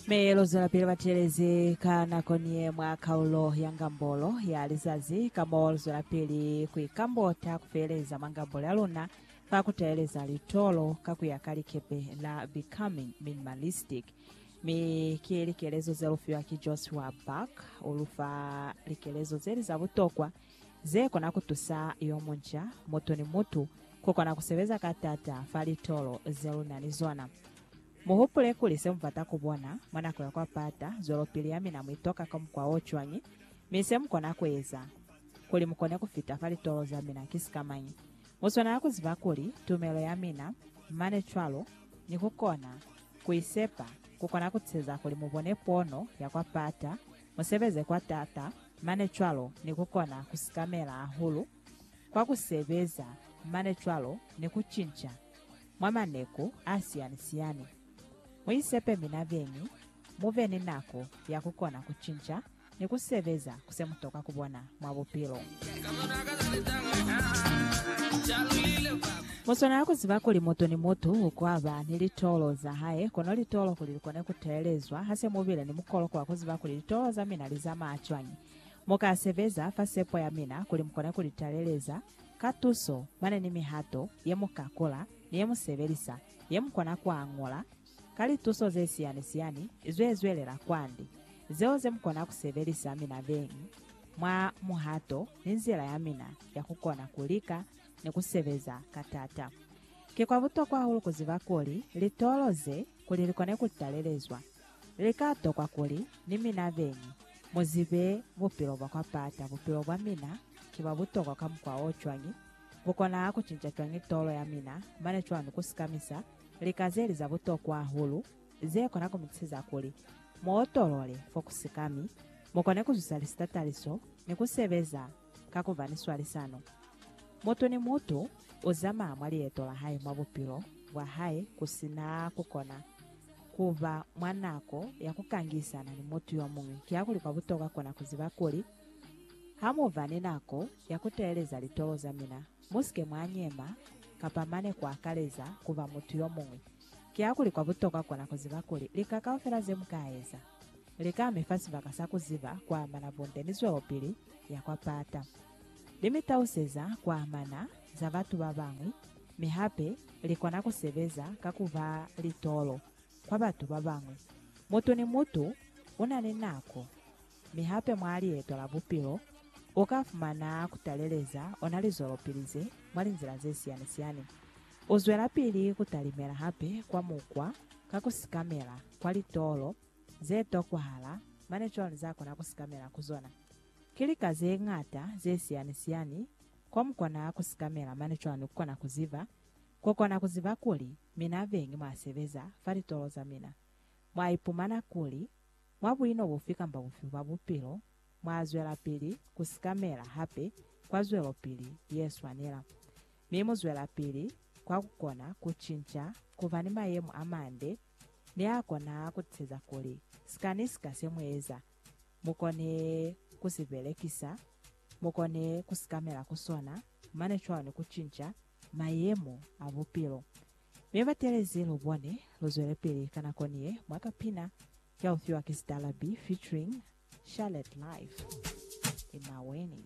Mi lu zwelapili batelezi ka nako ni ye mwa kaulo ya ngambolo ya lizazi, ka mo lu zwelapili ku ikambota ku feeleza mwa ngambolo ya luna fa ku taeleza litolo ka ku ya ka likepe la Becoming Minimalistic. Mi ki likelezo ze lu fiwa ki Joshua Buck. U lu fa likelezo ze li za butokwa ze kona ku tusa yo munca, mutu ni mutu, ku kona ku sebeza ka t'ata fa litolo ze lu na ni zona. Muhupule kuli se mubata kubona mwa nako ya kwa pata zwelopili ya mina muitoka ka mukwa o cwañi, mi se mukona kueza kuli mukone kufita fa litolo za mina ki sikamañi. Muswanela kuziba kuli tumelo ya mina, mane cwalo ni kukona kuisepa, kukona kuteza kuli mubone pono ya kwa pata, musebeze kwa taata, mane cwalo ni kukona kusikamela hahulu kwa ku sebeza mane cwalo ni ku cinca mwa maneku a siyani-siyani. Mu isepe mina beñi mu be ni nako ya ku kona ku cinca ni ku sebeza ku se mu toka ku bona mwa bupilo. Mu swanela ku ziba kuli mutu ni mutu u ka ba ni litolo za hae, kono litolo kuli li kone ku teelezwa ha se mu bile ni mukolo kwa ku ziba kuli litolo za mina li zamaya cwañi. Mu ka sebeza fa sepo ya mina kuli mu kone ku li taleleza ka tuso mane ni mihato ye mu ka kola ni ye mu sebelisa ye mu kona ku añola ka lituso ze siyani-siyani zwe zwelela kwande, zeo ze mu kona ku sebelisa mina beñi mwa muhato ni nzila ya mina ya ku kona ku lika ni ku sebeza ka taata. Ki kwa butokwa hahulu ku ziba kuli litolo ze kuli li kone ku talelezwa. Li ka tokwa kuli ni mina beni mu zibe bupilo bwa kwa pata. Bupilo bwa mina ki bwa butokwa ka mukwa o cwañi? Bu kona ku cinca cwañi tolo ya mina? Mane cwani ku sikamisa lika ze li za butokwa hahulu ze kona ku mi siza kuli mu otolole fo ku sikami, mu kone ku zusa lisitataliso ni ku sebeza ka ku ba ni swalisano. Mutu ni mutu u zamaa mwa lieto la hae mwa bupilo bwa hae ku si na ku kona ku ba mwa nako ya ku kangisana ni mutu yo muñwi. Kiakuli kwa butokwa kona ku ziba kuli, Ha mu ba ni nako ya ku teeleza litolo za mina, mu si ke mwa nyema kapa mane ku akaleza ku ba mutu yo muñwi. Kiakuli kwa butokwa kona ku ziba kuli, lika kaufela ze mu ka eza, lika mi fa sibaka sa ku ziba kwa amana bunde ni zwelopili ya kwa pata. Li mi tauseza kwa amana za batu ba bañwi, mi hape li kona ku sebeza ka ku ba litolo kwa batu ba bañwi. Mutu ni mutu u na ni nako, mi hape mwa lieto la bupilo u ka fumana ku taleleza ona lizwelopili ze mwa linzila ze siyani-siyani. U zwelapili ku talimela hape kwa mukwa ka ku sikamela kwa litolo ze tokwahala, mane cwalo za kona ku sikamela ku zona. Ki lika ze ñata ze siyani-siyani ko mu kona ku sikamela, mane cwalo ni ku kona ku ziba. Ku kona ku ziba kuli mina beñi mwa sebeza fa litolo za mina, mwa ipumana kuli mwa buino bufi kamba bufi bwa bupilo, mwa zwelapili ku sikamela hape kwa zwelopili ye swanela, mi mu zwelapili kwa ku kona ku cinca ku ba ni mayemo a mande, Nia kona kutiseza kuli sika ni sika se mueza, mukone kusibelekisa, mukone kusikamela ku sona, mane cwalo ni kucinca mayemo a bupilo. Mi batelezi lubone, luzwelepili ka nako niye mwa kapina kia ufiwa ki Sitalabi featuring Charlotte Life. Imaweni.